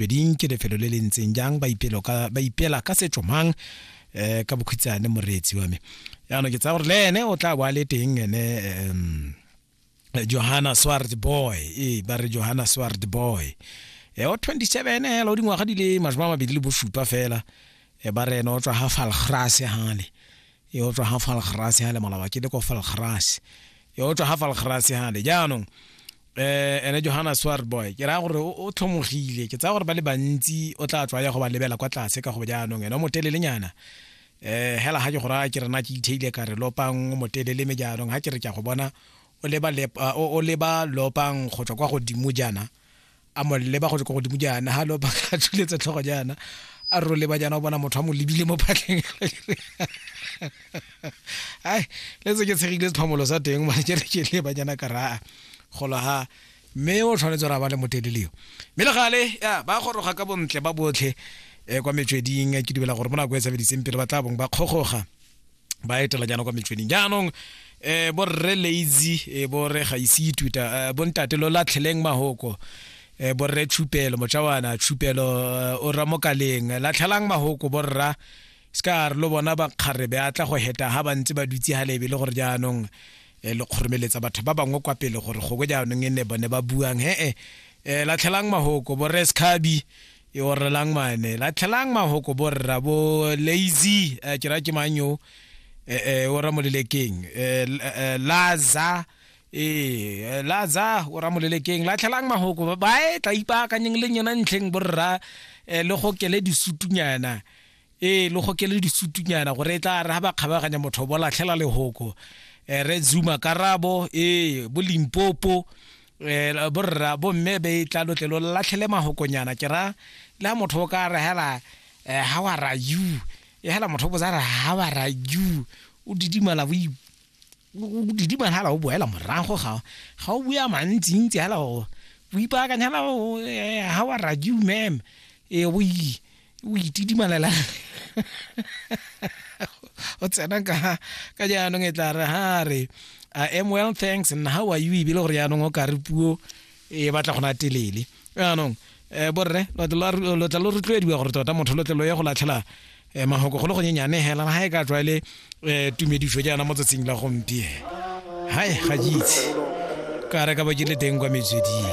beding ke lefelo le le ntseng jang ba ipela ka setso mang um ka bokhutshwane moreetsi wa me yaanong ke tsaya gore le ene o tla boa le teng ene um johanna sward boy ee ba re johanna sward boy e o 27 hela o dingwaga di le masome a mabedi le bosupa fela e ba re ene o tswa ga falgrase gale e o tswa ga falgrase gale malaba ke le ko falgrase e o tswa ga falgrase gale jaanong eh ene Johanna Swarboy ke ra gore o tlhomogile ke tsaya gore ba le bantsi o tla tswa ya go ba lebela kwa tlase ka go jaanong ene o motelele nyana eh hela ha ke go ra ke rena ke itheile ka re lopang o motelele me jaanong ha ke re ke go bona o leba ah, o leba lopang go tswa kwa godimo jana a mo leba go tswa kwa godimo jana ha lopang a tshuletse tlhogo jana a ro leba jana o bona motho a mo lebile mo phatleng ai le tse ke tshegile sephomolo sa teng mane ke re ke le banyana ka raa golo ha mme o tshwanetse ra ba le moteleleo mme le gale ya ba goroga ka bontle ba botlhe um kwa metsweding ke dumela gore mo nako e sebediseng pele ba tla bong ba kgogoga ba etela jaana kwa metsweding jaanong um borre lazy um borre ga ise ituta bontate lo latlheleng mahoko um borre tshupelo mojawana tshupelo o ramokaleng latlhelang mahoko borra um se ka re lo bona bakgarebe a tla go heta ha ba ntse ba dutse ha lebe le gore jaanong e le kgoromeletsa batho ba bangwe kwa pele gore gongwe jaanong e ne bone ba buang he-e um latlhelang mahoko bo rescabi e orelang mane latlhelang mahoko bo rra bo lazy um ke ra ke mang yo um o ramolelekeng um laza ee laza o ramolelekeng latlhelang mahoko bae tla ipaakanyeng le nyena ntlheng borra um le go kele disutunyana ee le gokele disutunyana gore e tla re ga ba kgabaganya motho bo latlhela lehoko eh, re zuma karabo ee bo limpopo eh, borra bomme be e tla lotle lo latlhele magokonyana ke ra le ga motho o ka re hela eh, how are you e hela motho o botsa re how are you o didimala bo didima hala o boela morago ga ga o bua mantsi ntsi hala o o ipaakanya hala o eh, how are you ma'am e o o itidimalela o tsena ka ka jaanong e tla re ha re i am well thanks and how are you ebile gore jaanong o ka re puo e batla go na telele jaanong um borre lo tla lo rotloediwa gore tota motho lo tle lo ye go latlhela um mahoko go le gonyenyane hela ga e ka tlwaele um eh, tumediso jaana mo tsatsing la gompieno hai ga jitse ka re ka ba ke le teng kwa metsweding